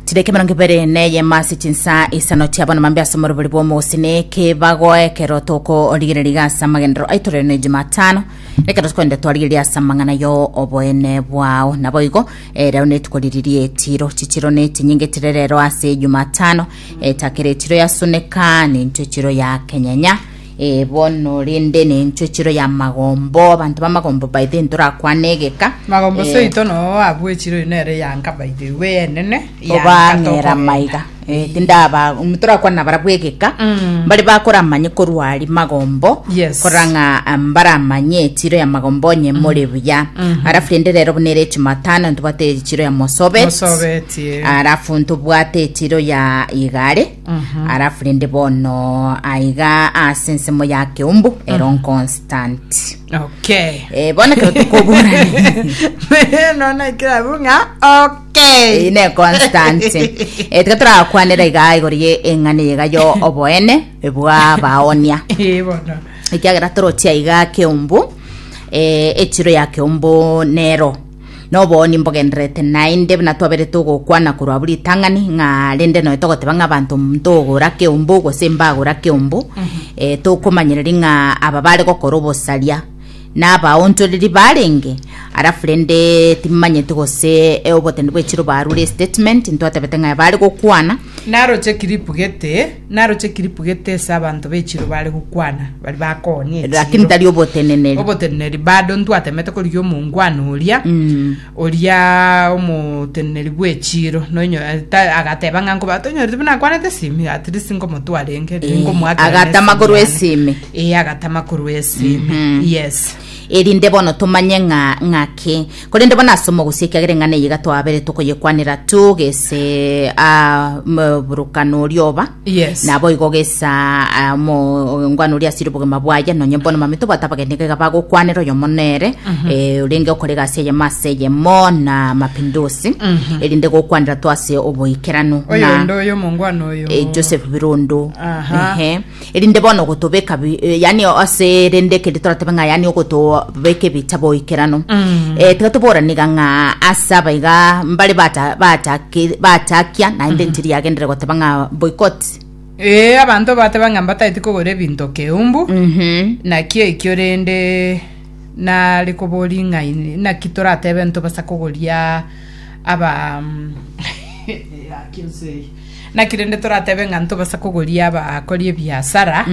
chideka emerongo ibere neyemo ase chinsa isano chiabana mambe ase omorobori bwa omogosini kebago ekero tokorigereria iga ase amagenderero aito rero ne jumatano ekero tokorenda twarigereria ase amang'ana yo oboene bwao nabo igo eh, rero netuko riri rietiro chichiro ne chinyinge chire rero ase jumatano etakere chiro ya suneka nincho chiro ya kenyenya Ee bono, rende nenchwe chiro y'amagombo, abanto b'amagombo baito intwe torakwane egeka. Magombo Eh, seito noo abwechire oyo nere yanka by the way enene obang'era maiga Eh, tindaba torakwana bara bwegeka Mm. mbare bakoramanye korwa ari magombo Yes. korang'a ah, mbaramanye echiro ya magombo onye more buya arafu rende rero buna ere echimatano ntobate echiro ya mosobet mosobetie arafu ntobwate echiro ya igare alafu rende bono aiga ase ensemo ya keumbu ero constant okay Eh, bono ekero tokoburana nona kirabu ng'a okay iyi ne constant Eh, tiga torakwanera iga igoro ye eng'ana iga yo oboene bwa baonia Eh, bono ekiagera torochia iga keumbu eh, echiro ya keumbu nero Noboonye mbogendererete naende buna twaberete ogokwana korwa buri ritang'ani, ng'a rende nonya togoteba ng'a abanto ntogora keombo gose mbagora keombo, eh, tokomanyereria ng'a aba bare gokora obosaria nabaonchoreri barenge, alafu rende timanyeti gose eh, obotende bw'echiro barure estatement, ntwatebete ng'a bare gokwana, Naroche kiripu gete. Naroche kiripu gete ase abanto be chiiro baare gokwana, baria bakoonia echiiro. Lakini tari oboteneneri. Oboteneneri bado ntwatemete korigia omongwana oria, oria omoteneneri bw'echiiro, nonyo- eh, ta- agateba ng'a nkoba tonyorete buna akwanete esimi, at least nkomotwara enge, Eh, ngomoakera agatama nesimi korwa yane. esimi. Eh, agatama korwa esimi. Yes. erinde bono tomanye ng'a ng'ake. Korende bono ase omogosi ekiagera eng'ana eye iga twaberete okoyekwanera togese ah, m- burukana oria oba Yes. nabo igo gesa ah, mo- ngwana oria asire obogima bwaye nonye bono mami tobwate abageni iga bagokwanera oyomo nere eh, orenge okore egasi eyemo ase eyemo na mapindusi erinde gokwanera to ase oboikeranu na oyonde oyo omongwana oyo eh, joseph birondo Aha. Ehe. Erinde bono gotobeka bi- eh, yani ase rende kende toratebe ng'a yani ogotobeka ebitabo oikeranu Mm. Eh, tiga toboraniga ng'a ase abaiga mbare bata- bataki- batakia naende ntiri yagendere goteba ng'a boycott ee abanto bateba ng'a mbataeti kogora ebinto keumbu Mhm. naki ekio rende nare kobori ng'a in- naki toratebe ntobasa kogoria aba mm, yaki nse eye. Naki rende toratebe ng'a ntobasa kogoria abakori ebiasara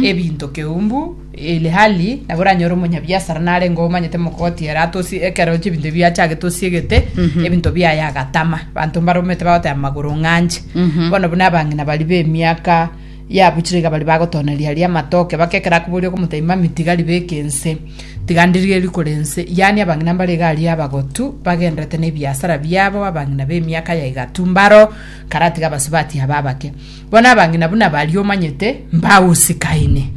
ebinto keumbu, ilhali nabo oranyore omonyabiasara narenge omanyete mogoti ere atosi ekero chibinto ebi achagete osiegete ebinto biaye agatama banto mbaromete bagoteba magoro ng'anche bono buna abang'ina bari b'emiaka yabuchire iga bari bagotoneria aria amatoke baka ekero akoboria okomotebi mami tiga ribeke ense tiga ndirie rikore ense yaani abang'ina mbare iga aria abagotu bagenderete nebiasara biabo abang'ina b'emiaka ya igatu mbaro karatiga abasubati aba abake bono abang'ina buna baria omanyete mbausikaine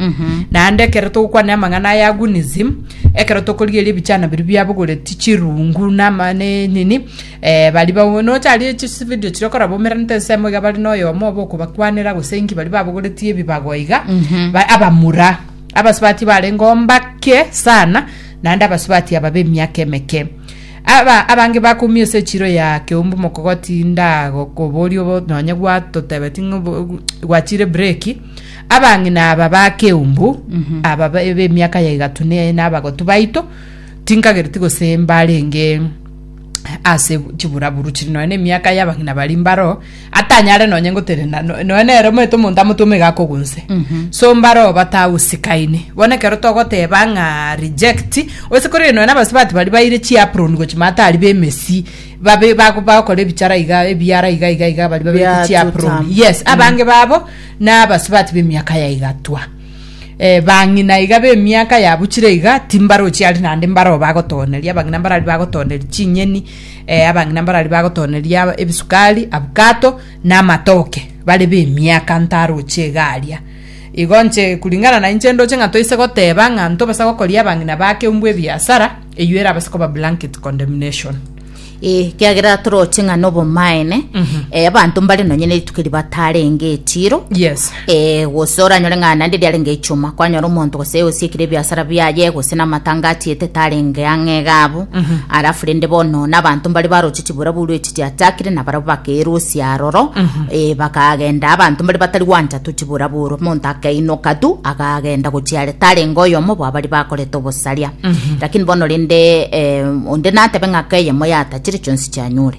naende ekero togokwana amang'ana aya agunism ekero tokorigeria ebichana biria biabogoreti chirungu nama ne nini eh, bari bago nocharie chisividio chiria okoraba omeranete ensemo iga bari noyomo oba okobakwanera gose inki bari babogoretie ebibago iga ba- abamura abasubati barenge ombake sana naende abasubati aba b'emiaka emeke Aba abange bakumia ase echiro ya keumbu mokogotinda gokoboria obo nonye gwatotebeti ng'a obo- obo- gwachire breki. Abang'ina aba ba keumbu, aba ba- b'emiaka ya egatu ne- na abagotu baito, tinkagereti gose mbarenge ase chiburaburu chiri nonye na emiaka y'abang'ina baria mbaro, atanyare nonye ngotenena no- noe nere omanyete omonto amotwe omaiga akogunse so mbare oo batagusikaine bono ekero togoteba ng'a reject gose korende nonya na abasubati baria baire chiapron gochia matari ba emesii babe bago bagokora ebichara iga ebiara iga iga iga baria babete Biato chiapron tam. yes abange babo na abasubati b'emiaka yaigatwa eh, bang'ina iga b'emiaka yabuchire iga timbarochi aria naende mbare oo bagotoneria abang'ina mbare aria bagotoneria chinyeni Eh, abang'ina mbarari bagotoneria ab- ebisukari abukato na amatoke bare b'emiaka ntaroche egaria igo nche kuringana na inche ndoche ng'a toise goteba ng'a ntobasa gokoria abang'ina bake umbwa ebiasara eyio erabase koba blanket condemnation Eh, kiagera toroche ng'a nobomaene eh, abanto mbare nonye nerituko ribatarenge etiro yes Ee, gose oranyore ng'a naende riarenge echuma, kwanyora omonto gose osiekire ebiasara biaye, gose namatanga atiete tarenge ang'e iga abwo. Alafu rende bono nabanto mbare baroche chiburabwo rwe echi chiachakire, nabarabwo bakerusia aroro, ee, bakagenda abanto mbare batari gwancha tu chiburabwo orwo. Omonto akainoka tu, agagenda gochia are, tarenge oyomo bwabari bakorete obosaria. Lakini bono rende eh, onde natebe ng'a keyemo yatachire chionsi chianyure.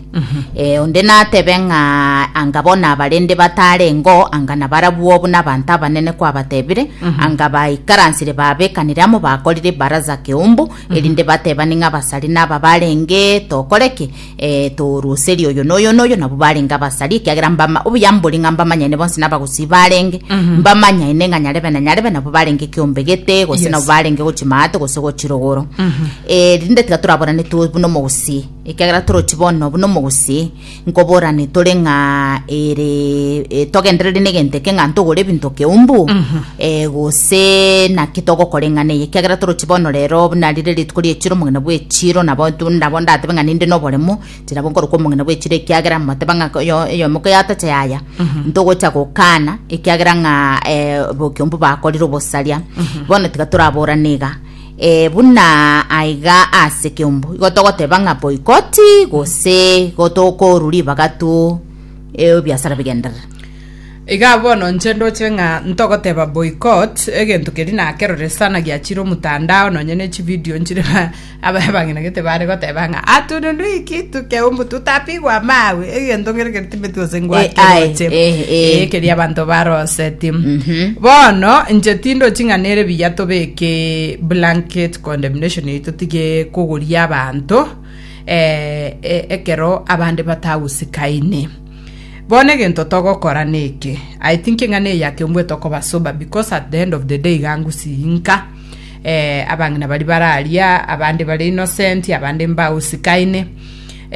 Ee, onde natebe ng'a anga bono abarende batarengeo, anga nabarabwo buna abanto abanene kwabatebire, anga baikaransire babekanire amo bakorire baraza keumbu, erinde batebane ng'a abasari naba barenge tokore ki? Eh, toruserie oyo noyo noyo, nabo barenge abasari, ekiagera mbama, obuya mbori ng'a mbamanyaine bonsi nabagusii barenge, mbamanyaine ng'a nyarebe na nyarebe nabo barenge kiombe gete, gose Yes. nabo barenge gochia maate gose gochia rogoro. Eh, rinde tiga toraborane tu buna omogusii. Ekiagera toroche bono buna omogusii, nkoborane tore ng'a ere eh, togenderere negento eke ng'a ntogore ebinto keumbu eh, gose naki togokoreng'ana eye ekiagera toroche bono rero buna rire rituko ri'echiro omogina bw'echiro nabo tu- nabo ndatebe ng'a ninde noboremu tirabo nkorokwa omogina bw'echiro ekiagera moteba ng'a oyo oyomo koyatacha yaya ntogocha gokana ekiagera ng'a eh, bo- keumbu bakorire obosaria bono tiga toraborane iga Ee, buna aiga ase ekeombo, igo togoteba ng'a boikoti, gose igo tokoru ribaga tu ebiasara bigenderere. Igaa bono inche ndoche ng'a ntogoteba boycott egento keria nakerore sana giachire omotandao nonye ne chividio nchire ba aba abang'ina gete bare goteba ng'a atununu iki tukeumbu tutapigwa amawe egento kere kere Ebintu ase ngwake Eh, aye, roche. eh, eh. Eh, keria abanto baroseti Mhm. bono inche tindochi ng'a nere biya tobeke blanket condemnation yaito tige kogoria abanto eh, eh, ekero abande batagusikaine bono egento togokora neke i think ng'a neyake mbwe tokoba sober because at the end of the day gangusinka eh, abang'ina bari bararia abande bari innocent abande mbagusikaine